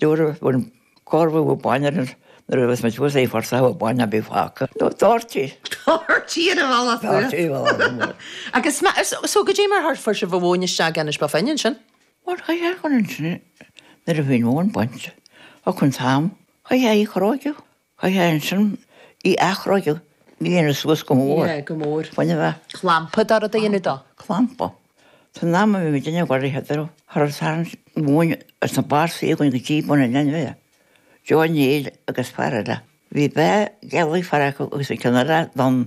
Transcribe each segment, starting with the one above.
Nuair a bhain Corfu a bainne nuair a bheas muid pósta fosta bainne ar bith fágtha. Nó Doherty. Doherty ar a bhall as nuair. Doherty ar a bhall as nuair. Agus ma, so goidé mar a fuair sibh an mhóin isteach anois ba dh'é ansin? Bhuel cha dhein. Ansin nuair a bhí an mhóin bainte. Achan am, cha dhein í a chróigeadh. Chaití ansin í a athchróigeadh suas go mór. Yeah, go mór. Baineadh a. Clampa a dhéanamh di. Clampa. San am a bhí muid ina cruach thart ar an Satharn seo chugainn agus na Barsaigh againn go dtí bun an leathnaigh, Joe O'Neill agus fear eile, bhí Bea Gelly, fear acu, agus an ceannaire, Don.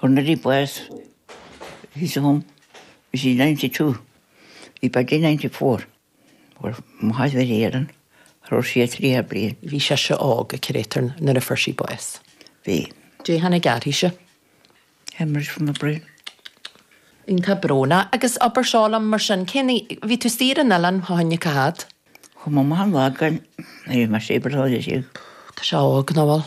When Lily was his home is in ninety two í baill in ninety four bhfuair Maigh Mhile Éireann threoir sí a trí thar bliain. Bhí sise óg a curator nuair a fuair sí bás. Bhí. Dé hAoine gearrthaise. Hemorrhage from a brain. Iontach bróna agus obair seoil ann mar sin cinnte, ní bhí tú saor Dé hAoine, cá fhad? Chuir mo mham lá againn nuair a bhí mar sé ball Sháile Dé. Tá sé óg Noel.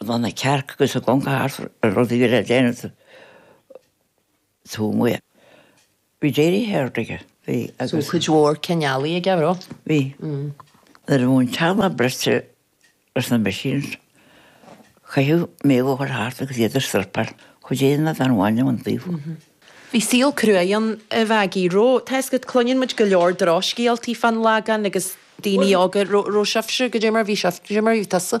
Tá na cearc agus a gconca thart ar rud a bhí le déanamh sa tsúil amuigh. Bhí Jerry Heard aige. Bhí agus. Bhí cuid mhór cineálaí aige, bhí? Bhí. Nuair a bhí an teallach bruite leis na machines, chaitheadh Méabh a chur thart agus iad a struipeáil. Chuid éigin a bhaint anuas ón taobh. Bhí saol cruaidh ann a Mhaggie. Ró, tá 'fhios agat, cluineann muid go leor drochscéaltaí fán Lagán agus daoine óga, ró, ró sibhse, go deimhin, mar bhí sibh, go deimhin mar bhí tusa.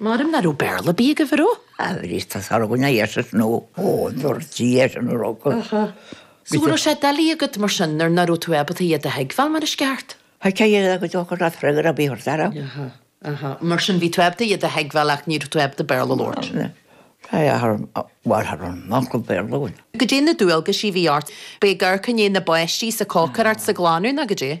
Maram ná raibh Béarla ar bith agaibh, a raibh? Á, bhris tusa ar dhuine dheis is nó ó ndúirt sí dheis an raibh go. Aha. So an raibh sé doiligh agat mar sin nuair ná raibh tú ábalta iad a thuigbheáil mar is ceart? Tá sé iad a go deo go raibh freagra ar bith ort, a raibh? Aha. Aha. Mar sin bhí tú ábalta iad a thuigbheáil ach ní raibh tú ábalta Béarla a labhairt? Ná. Tá a thar am, bhuel thar am nach raibh Béarla againn. Goidé na dualgaisí a bhí ort, ab é ag tabhairt aire do na páistí is ag cócaireacht is ag glanadh, nó goidé?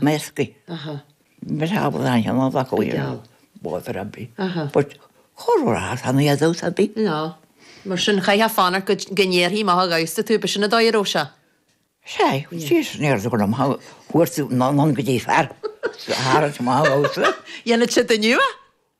measctha mar shampla an t-am a bhacadh iad ar bóthar ar bith but corruair a tharla iad thus ar bith. Ná mar sin chaithfeá fanacht go go n-éireodh mach an mháistreás, b'shin a dóigh, ó sea. Sea, tchí san aer do go raibh maith agat, fuair tú na n-ann go dtí fear sa Charraig má ghabhstar. Dhéanfaidh siad duine nua.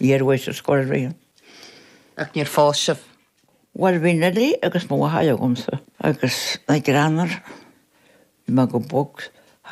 Bhí ar m'aois, scór a haon. Ach níor phós sibh? Bhuel, bhí Nellie agus mo mháthair agamsa, agus na Granars. Bhí mé go bog thar